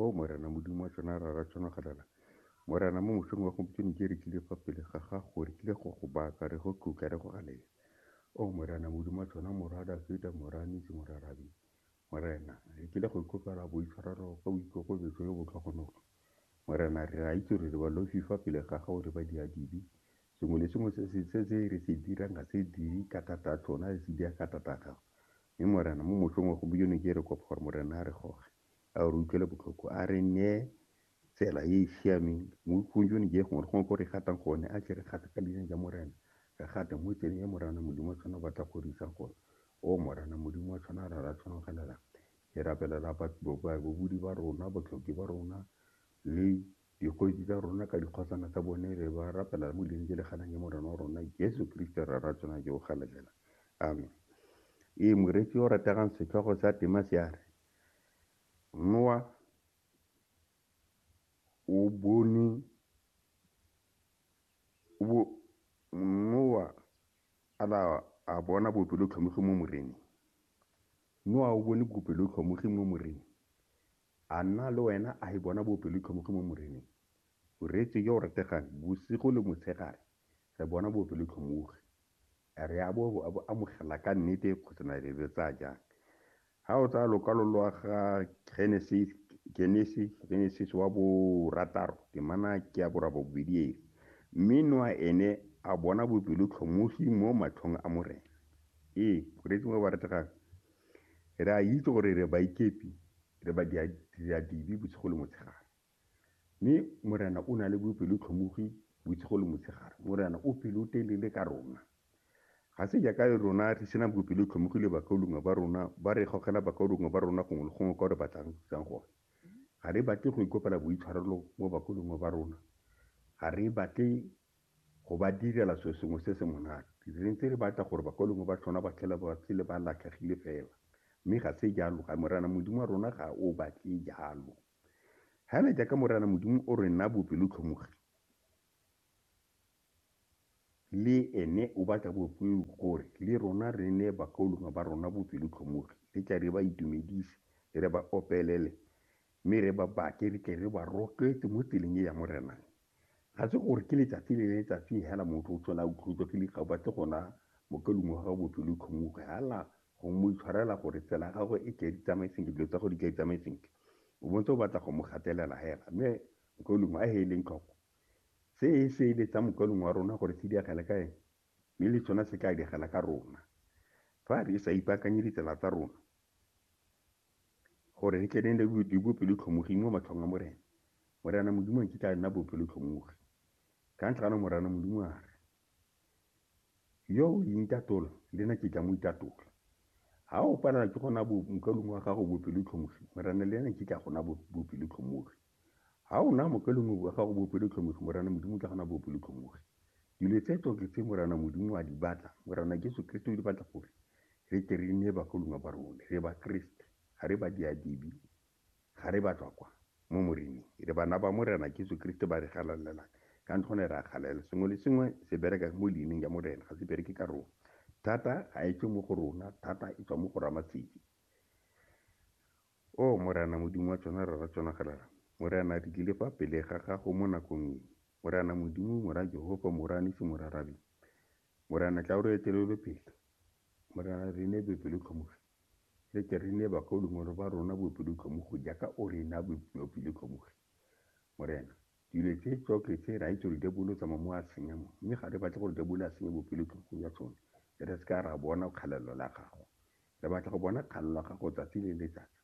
O Morena Modimo wa tsona rara tsona galala, Morena, mo mosong wa gompieno ke re tlile fa pele ga gago, re tlile go go baka, re go tlotla, re go galela. O Morena Modimo wa tsona Morwa Dafita, Morwa Nisi, Morwa Rabi, Morena, re tlile go ikopela boitshwarelo ka boikokobetso yo botlhogonolo. Morena, re a itse gore re balofi fa pele ga gago, re badiadibi. Sengwe le sengwe se re se dirang ga se dire ka thata a tsona, re se dira ka thata a gago. Mme Morena, mo motlhong wa gompieno ke re kopa gore Morena a re goge, a re utlwele botlhoko, a re neye tsela e e siameng mo tlhong jone je gongwe le gongwe ko re gatang gone, a tle re gate ka leina ja Morena, re gate mo tseleng e Morana Modimo wa tshwana o batla go re isang gone. O Morana Modimo wa tshwana ra ra tshwana ga lelang. Ke rapelela babudi ba rona, botlhoki ba rona, le Dikgosi tsa rona ka dikgosana tsa bone re ba rapela mo dileng tse le ganang ke Morena wa rona Jesu Kriste Rra ra tsona jo o galelela. Amen. Ee, moreetsi yo o rategang setlhogo sa tema se a re, Noa o bone o bo Noa a la a bona bopelotlhomogi mo Moreneng. Noa o bone bopelotlhomogi mo Moreneng. A nna le wena a e bona bopelotlhomogi mo Moreneng? O reetswe yo o rategang bosigo le motshegare, re bona bopelotlhomogi. A re a bo a bo amogela ka nnete kgotsa na re re tsaya jang? Ha o tsaya lokwalo lwa ga Genesis, Genesi, Genesis wa borataro, temana ke ya borabobedi e re, Mme Noa ene a bona bopelotlhomogi mo matlhong a Morena. Ee, o reetswe yo o rategang Re a itse gore re baikepi, re badiradibe bosigo le motshegare. Mme Morena o na le bopelotlhomogi bosigo le motshegare. Morena o pelotelele ka rona. Ga se jaaka rona re sena bopelotlhomogi le bakaulengwe ba rona, ba re gogela bakaulengwe ba rona gongwe le gongwe kwa re batlang go thusang gone. Ga re batle go ikopela boitshwarelo mo bakaulengwe ba rona. Ga re batle Go ba direla selo sengwe se se monate. Re ntse re batla gore bakwalengwe ba tsona ba tlhole ba phele ba latlhegile fela. Mme ga se jalo. Ga Morena Modimo wa rona ga o batle jalo. Hela jaaka Morena Modimo o re naa bopelotlhomogi, le ene o batla gore le rona re neye bakwalengwe ba rona bopelotlhomogi. Re tle re ba itumedise, re ba opelele, mme re ba bake re tle re ba rotloetse mo tseleng e ya Morena. Ga se gore ke letsatsi le letsatsi hela motho o tsena a utlwetswa ke dikgaba tse gona mo ka lungwa ga botso le tlhomuge hala go mo itshwarela gore tsela ya gagwe e tle di tsamaye sentle dilo tsa go di tle tsamaye sentle o bontse o batla go mo gatelela hela mme mokalungwa a heeleng tlhoko se e se ile tsa mokalung wa rona gore se diagele ka ene mme le tsona se tla diagela ka rona fa re sa ipaakanye ditsela tsa rona gore re tle re nne le bopelotlhomogi mo matlhong a Morena. Morena Modimo a nkitla a nna bopelotlhomogi. Ka ntlha ano Morena Modimo a re, Yo o intatola, le nna ke tla mo itatola. Ha o palelwa ke go na mokalung wa gago bopelotlhomogi, Morena le ena nkitla a go na bopelotlhomogi. Ha o na mopelonomi wa gago bopelotlhomogi, Morana Modimo o tla gana bopelotlhomogi. Dilo tse tsotlhe tse Morana Modimo a di batla, Morana Jesu Keresete o di batla gore re tle re nne bagolongwa ba rone. Re ba Keresete, ga re ba diadibi, ga re batswakwa mo Moreneng. Re bana ba Morena Jesu Keresete ba re galalelang, ka ntlha gone re a galalela. Sengwe le sengwe se bereka mo leineng ya Morena, ga se bereke ka rona. Thata ga e tswe mo go rona, thata e tswa mo go Ramasedi. Oo Morena, Modimo wa tšona re ra tšona galala. Morena, re tlile fa pele ga Gago mo nakong e. Morena Modimo, Mora Jehofa, Mora Nisi, Mora Rabi. Morena, tla o re etelele pele. Morena, re nee boepelotlhomo re. Re tle re nee bakaulengwe ba rona boepelotlhomo go jaaka O re naa boepelotlhomo re. Morena, dilo tse tsotlhe tse, re a itse gore diabolo o tsamaya mo a senya mo, mme ga re batle gore diabolo a senye boepelotlhomo jwa tsone, re se ka ra bona kgalalelo la Gago. Re batla go bona kgalo la gago tsatsi le letsatsi.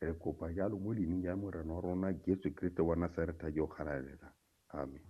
Re kopa jalo mo leining la Morena wa rona Jesu Keresete wa Nasaretha yo o galalelang. Amen.